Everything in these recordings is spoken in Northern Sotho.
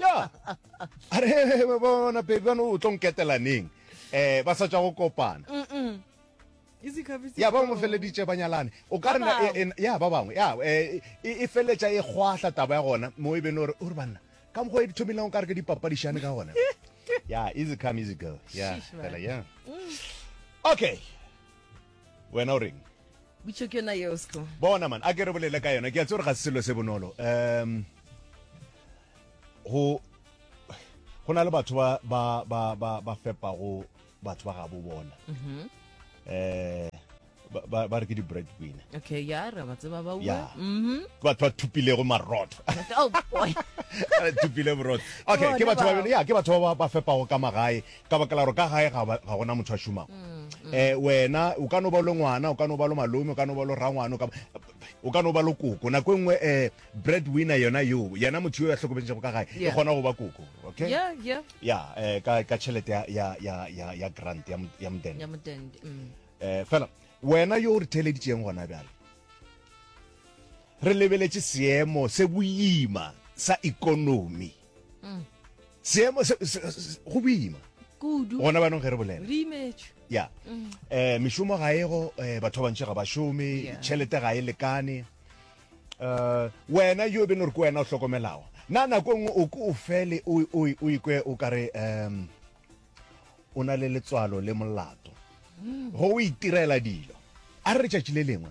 ya a re bona baby bana o tlo nketelaneng um ba sa tswa go kopana ya ba mo feleditše ba nyalane o ka rena e- e- ya ba bangwe ya eh, e e feletša e kgwahla taba ya gona mo e bene ore ore banna ka mokgwa e di thomilego ka re ke dipapadišane ka gona ya easy come easy go ya Sheesh, man. fela ya okay wena o reng butšo ke yona yeo sco bona man a ke re bolele ka yona ke a tse gore ga se selo se bonolo um go go na le batho ba ba ba ba ba fepago batho ba gabo bona um ba ba re ke di-bread winner okay ya re ba tseba ba ya ua mhm ke batho ba thupilego marotho oh boy thupile borotho okay Bona ke batho bao. ba ya ke batho ba ba- ba fepago ka magae Ka baka la gore ka gae ga, ga go na motho a šomago. E, wena o ka no ba lo ngwana, o ka no ba lo malome, o ka no ba lo rangwana, o ka, o ka no ba lo koko. Nako e nngwe e, breadwinner yona yo, yena motho yo a hlokometšego ka gae, e kgona go ba koko. Okay? Yeah, yeah. Ya, e, ka, ka tšhelete ya, ya, ya, ya, ya grant, ya, ya modende. Ya modende. Mm. E, fela, wena yo o re theeleditšeng gona bjale, re lebeletše seemo se boima sa ekonomi. mm. seemo go boima kudu gona banong ge re bolela re imetšwe ya um mešomo ga ego eh, batho ba bantši ga ba šome tšhelete ga e lekane um wena yo e bene gore ke wena o hlokomelago na nako e nngwe o ke o fele o ikwe o kare um o na le letswalo le molato go o itirela dilo a re letšatši le lengwe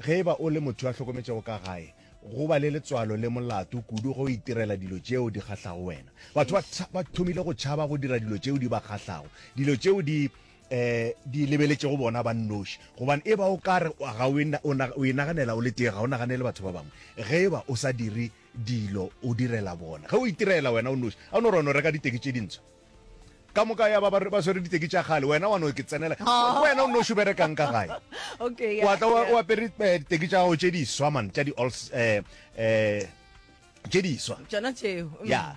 Ge e ba o le motho yo a hlokometšego ka gae, go ba le letswalo le molato kudu ge o itirela dilo tšeo di kgahlago wena. Batho ba, ba thomile go tšhaba go dira dilo tšeo di ba kgahlago, dilo tšeo di, um di lebeletšego bona ba nnoši. Gobane e ba o ka re ga o e, o, o e naganela o le tee, ga o naganele batho ba bangwe. Ge e ba o sa dire dilo o direla bona, ge o itirela wena o nnoši, a o no rona o reka diteki tše dintsho. ka moka ya ba ba swere diteki tša gale wena wa no ke tsenela wena o no šo berekang ka gae okay wa tla o apere eh, diteki tša gago tše di swa man tša di alls eh eh tše di swa tsona tšeo mm. ya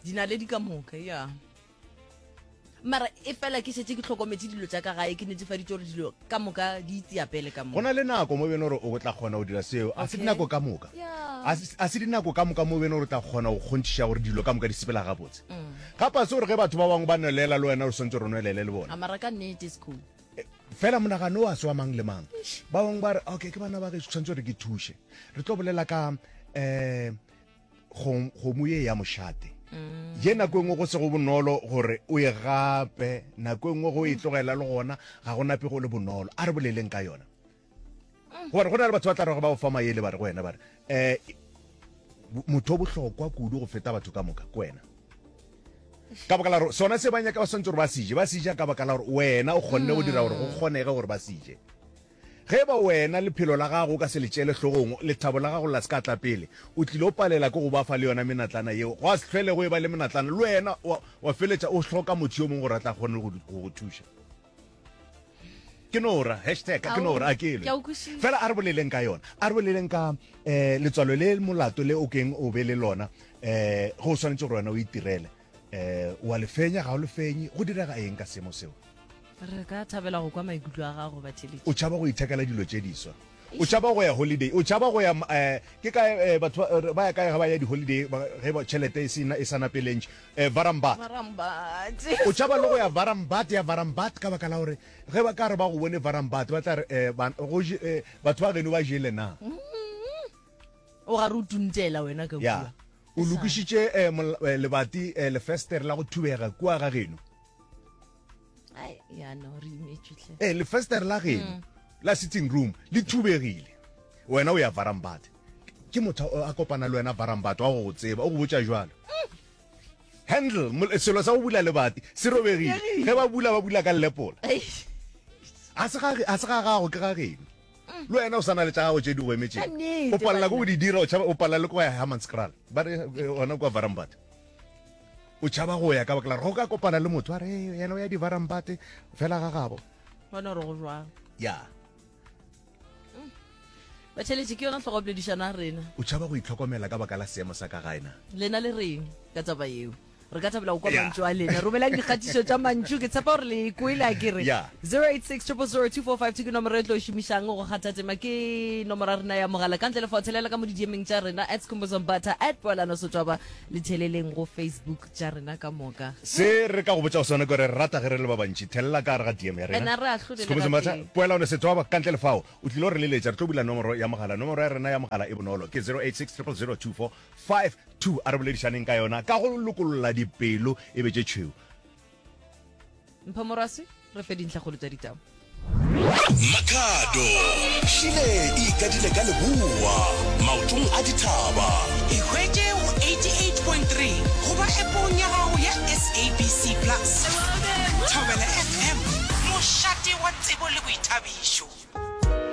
di na le di ka moka ya mara e fela ke setse ke tlhokometse dilo tsa ka gae ke netsefaditse gore dilo ka moka di itseya pele ka go na le nako mo bene gore o tla kgona go dira seo a se dinako ka moka a se dinako ka moka mo bene gore o tla kgona go kgonthiša gore dilo ka moka di sepela gabotse mm. ga pase gore ge batho ba bangwe ba nwelela le wena o swantse gore o nwelele le bona eh, fela monagano wa se wa mang le mang ba bangwe ba re okay ke bana ba ge tshwanetse gore ke thuše re tlo bolela ka um kgomo ye ya mošate ye nako engwe go sego bonolo gore o e gape nako engwe go e tlogela le gona ga go nape go le bonolo a re boleleng ka yona gore go na le batho ba tla rego ba o fa maele ba re go wena ba re um motho o bohlokwa kudu go feta batho ka moka ke wena ka baka la gore sona se ba nyaka ba swantse gore ba sije ba sija ka baka la gore wena o kgonne go dira gore go kgonege gore ba sije Ge e ba wena lephelo la gago o ka se le tšeele hlogong, lethabo la gago la se ka tla pele, o tlilo palela ke go ba fa le yona menatlana yeo. Gwa se hlwele go e ba le menatlana. Le wena wa, wa feletša o hloka motho yo mongwe gore a tla kgone go, go go thuša. Ke no ra, hashtag, ke no ra, a ke elwe. Fela a re boleleng ka yona. A re boleleng ka eh, letswalo le molato le o keng o be le lona eh, ge o swanetše gore wena o itirele. Eh, wa le fenya, ga o le fenye? Go direga eng ka seemo seo? Re ka thabela go kwa maikutlo a gago, Batheletši. O tšhaba go ithekela dilo tše diswa? O tšhaba go ya holiday? O tšhaba go ya um ke kae um batho ba ya kae ga ba ya di-holiday ge tšhelete e sena e sana pelentši um varambat o tšhaba le go ya varambat ya varambat ka baka la gore ge ba ka re ba go bone varambat ba tla re um batho ba geno ba jele na o gare o tuntela wena ka ya o lokišitše um lebati lefestere la go thubega kua ga geno eh, lefestere la geno mm. la sitting room le thubegile wena o ya varambate ke motho a kopana le wena varambate wa go go tseba o go botsa jalo handle selo sa go bula lebati se robegile ge ba bula ba bula ka lepola a se ga gago ke ga geno mm. le wena o sana le tsa gago tse di go emetseng o palela ko o di dira o palela le ko ya hammanscral ba re eh, ona kwa varambate o tšhaba go ya ka bakela go ka kopana le motho a re yena o ya divarambate fela ga gabo bona re go jwang ya mm. batšheletše ke yona tlhogopoledišano a rena o tšhaba go itlhokomela ka baka la seemo sa ka gaena lena le reng ka taba yeo re ka thabela go kwa mantšu a lena romelang dikgatišo tša mantšu ke tshepa gore le kwele a kere 08600245 ke nomoro e tlo šomišang go kgathatema ke nomoro ya rena ya mogala ka ntle le fothelele ka mo didiemeng tša rena at scombozombata at poelano sotswaba Le theleleng go Facebook tša rena ka moka. Se re ka go botšago sona ke gore re rata ge re le ba bantši. Thelela ka gare ga DM ya rena. And a re ahlole le ga tee. Poelano Setswaba, ka ntle le fao, o tlile go re leletša. Re tlo bula nomoro ya mogala. Nomoro ya rena ya mogala e bonolo, ke 0860024552. A re boledišaneng ka yona ka go lokolola dipelo e be tše tšhweu. mpho morwasi re fe dintlhagolo tsa ditau makhado šile e ikadile ka leboa maotong a dithaba ihwetše go 88.3 goba epong ya gago ya sabc plus thobela fm mošate wa tsebo le boithabišo